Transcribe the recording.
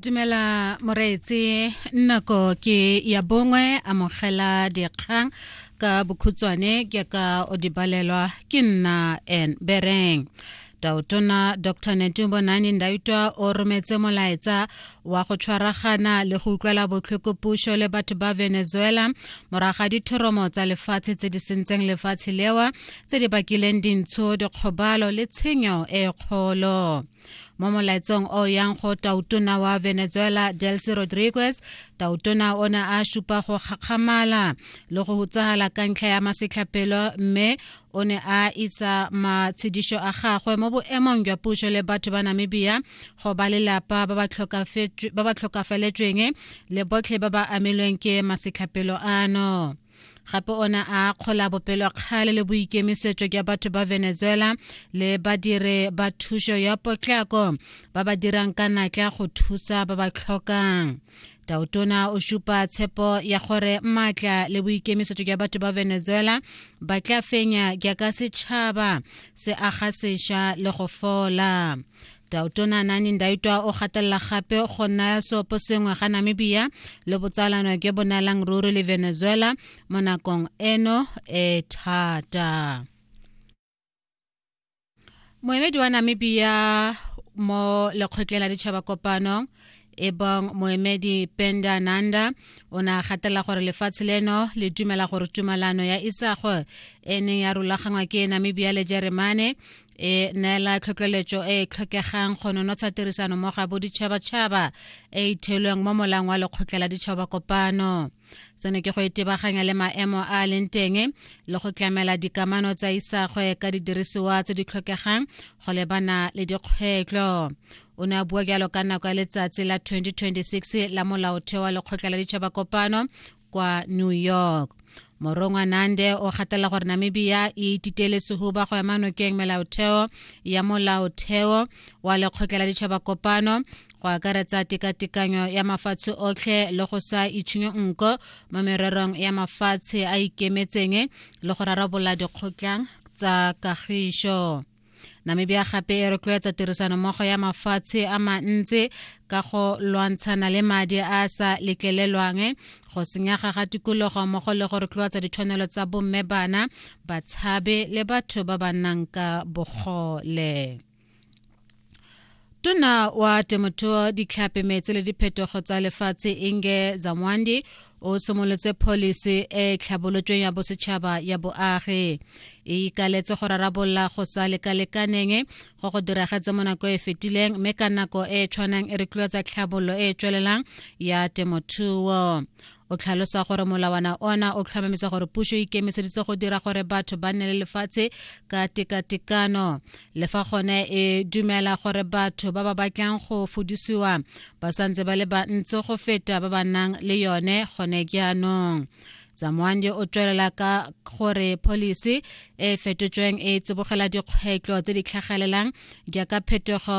dumela moreetse nako ke ya bongwe amogela dikgang ka bokhutswane ke ka o di balelwa ke nna en bereng taotona dr netumbo nani ndaitwa o rometse molaetsa wa go tshwaragana le go utlwela botlhoko puso le batho ba venezuela moraga dithoromo tsa lefatshe tse di sentseng lefatshe lewa tse di bakileng dintsho dikgobalo le tshenyo e kgolo mo molaetsong o yang go tautona wa venezuela delcy rodriguez tautona o ne a supa go kgakgamala le go hutsagala ka ntlha ya masetlhapelo mme o ne a isa matshedišo a gagwe mo boemong jwa puso le batho ba namibia go ba lelapa ba ba tlhokafeletsweng le botlhe ba ba amilweng ke masetlhapelo ano gape o ne a kgola bopelokgale le boikemisetso jwa batho ba venezuela le badire ba thuso ya potlako ba ba dirang ka natla go thusa ba ba tlhokang tautona o supa tshepo ya gore maatla le boikemisetso jwa batho ba venezuela ba tla fenya jaaka setšhaba se aga sešwa le go fola Tautona Anani Ndaitwa o gatelela gape go naya seopo sengwe ga Namibia le botsalano jo bo neelang ruri le Venezuela mo nakong eno e thata. Moemedi wa Namibia mo lekgotleng la ditšhaba kopano e bong moemedi penda nanda o ne a gatelela gore lefatshe leno le dumela gore tumalano ya isago e neng ya rulagangwa ke namibia le jeremane e neela tlhotlheletso e e tlhokegang go nonotsha tirisano mo ga boditšhabatšhaba e e theilweng mo molang wa lekgotla la ditšhaba kopano seno ke go itebaganya le maemo a a leng teng le go tlamela dikamano tsa isagwe ka didirisiwa tse di tlhokegang go lebana le dikgwetlho o ne a bua jalo ka nako ya letsatsi la 2026 la molaotheo wa lekgotla la ditšhaba kopano kwa new york morongwa nande o gatela gore namibia e ititele sehuba go ema nokeng melaotheo ya molaotheo wa lekgotla la ditšhaba kopano go akaretsa tekatekanyo ya mafatshe otlhe le go sa itshunyo nko mo mererong ya mafatshe a ikemetseng le go rarabola dikgotlang tsa kagišo namibia gape e rotloetsa tirisanommogo ya mafatshe a mantsi ka go lwantshana le madi a a sa letlelelwang go senyega ga tikologo mmogo le go rotloetsa ditshwanelo tsa bomme bana batshabe le batho ba ba nnang ka bogole tona wa temothuo ditlhape metse le diphetogo tsa lefatshe inge zamwandi o simolotse pholisi e e tlhabolotsweng ya bosetšhaba ya boagi e ikaletse go rarabolola go sa lekalekaneng go go diragetse mo nako e fetileng mme ka nako e e tshwanang e rotloetsa tlhabololo e e tswelelang ya temothuo o tlhalosa gore molawana ona o tlhomamisa gore puso e ikemiseditse go dira gore batho ba nne le lefatshe ka tekatekano le fa gone e dumela gore batho ba ba batlang go fudisiwa ba santse ba le bantsi go feta ba ba nang le yone gone jaanong tsamoanje o tswelela ka gore policy e fetotsweng e tsibogela dikgwetlho tse di tlhagelelang jaaka phetogo